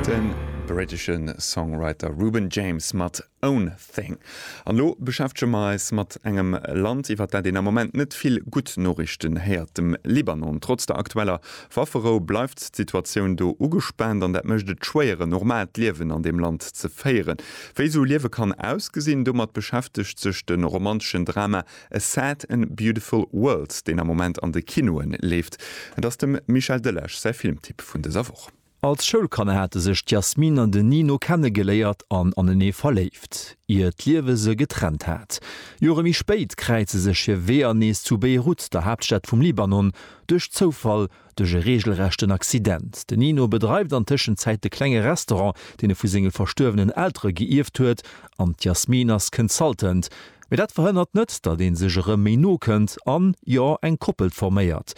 De brittesche Songwriter Reuben James mat Own Thing. An elo beschäftege mer eis mat engem Land, iwwer dat een am Moment net vill gutt Noriichten héiert, dem Libanon. Trotz der aktueller Wafferou bleift d'Situatioun do ugespaant an dat mécht et schwéier, en normaalt Liewen an deem Land ze féieren. Wéi esou Liewe kann ausgesinn, domat beschäftegt sech de romanteschen Drama A Sad and Beautiful World, deen am Moment an de Kinoen leeft. Et ass dem Michel Delage säi Filmtipp vun dëser Woch. Als Schoulkanner hate sech d'Yasmine an den Nino kennegeléiert an anenee verléift, ier d'Liewe se getrennt hat. Jore méi spéit kräize sech hir Weeër nees zu Beirut, der Haaptstad vum Libanon, duerch Zoufall Duerch e reegelrechten Accident. De Nino bedreift an Tëschenzäit de klenge Restaurant, deen e vu senge verstuerwenen Eltere geierft huet, an d'Yasmine ass Consultant. Mee dat verhënnert net, datt ee sech erëm méi no kënnt an, jo, eng Koppel forméiert.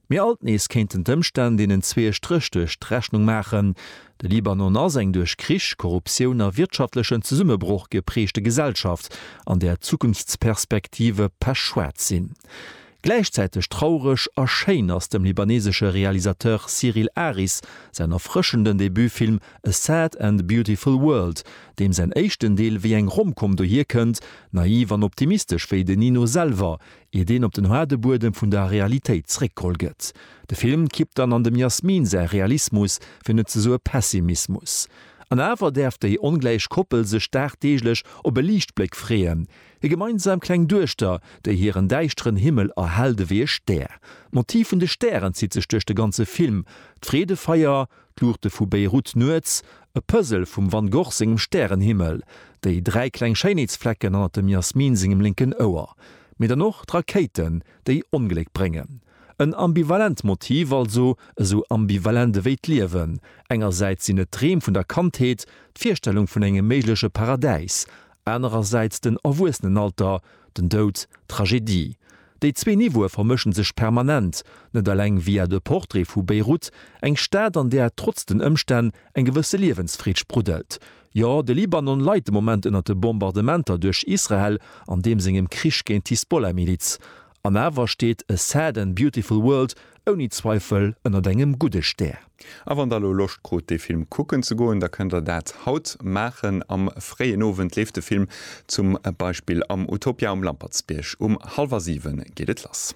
Mee alt nees kéinten d'Ëmstänn deenen zwee e Stréch duerch d'Rechnung maachen. De Libanon ass eng duerch Krich, Korruptioun a wirtschaftlechen Zesummebroch gepreegte Gesellschaft, an där d'Zukunftsperspektive pechschwaarz sinn. Gläichzäiteg traureg a schéin ass dem libanesesche Realisateur Cyril Aris säin erfrëschenden Debutfilm A Sad and Beautiful World, deem säin éischten Deel wéi eng Rom-Com dohier kënnt, naiv an optimistesch wéi den Nino selwer, iert een op den haarde Buedem vun der Realitéit zréckgeholl gëtt. De Film kippt dann an dem Yasmine säi Realismus, fir net ze soe Pessimismus. An awer däerf déi ongläich Koppel sech dagdeeglech op e Liichtbléck freeën, Hir gemeinsam kleng Duechter, déi hiren däischteren Himmel erhellt ewéi e Stär. D'Motiv vun de Stären zitt sech duerch de ganze Film, d'Freedefeier, d'Luuchte vu Beirut nuets, e Puzzle vum Van Gogh sengem Stärenhimmel, déi dräi kleng Schéinheetsflecken hannert dem Yasmine sengem lénken Ouer, mee dann och d'Rakéiten, déi Ongléck bréngen. En ambivalent Motiv also, esou ambivalent ewéi d'Liewen. Engersäits sinn et d'Dreem vun der Kandheet, d'Virstellung vun engem méigleche Paradäis, Anerersäits den Erwuessenenalter, den Doud, d'Tragedie. Déi zwee Niveaue vermëschen sech permanent, net eleng via de Portrait vu Beyrouth, eng Stad an där trotz den Ëmstänn eng gewësse Liewensfreed spruddelt. Jo, de Libanon leit de Moment ënner de Bombardementer duerch Israel an deem sengem Krich géint d'Hisbollah-Miliz. An awer steet A Sad and Beautiful World ouni Zweifel ënnert engem gudde Stär. A wann der elo Loscht krut dee Film kucken ze goen, da kënnt der dat haut maachen. Am fréien Owend leeft de Film zum Beispill am Utopia um Lampertsbierg. Um hallwer 7 geet et lass.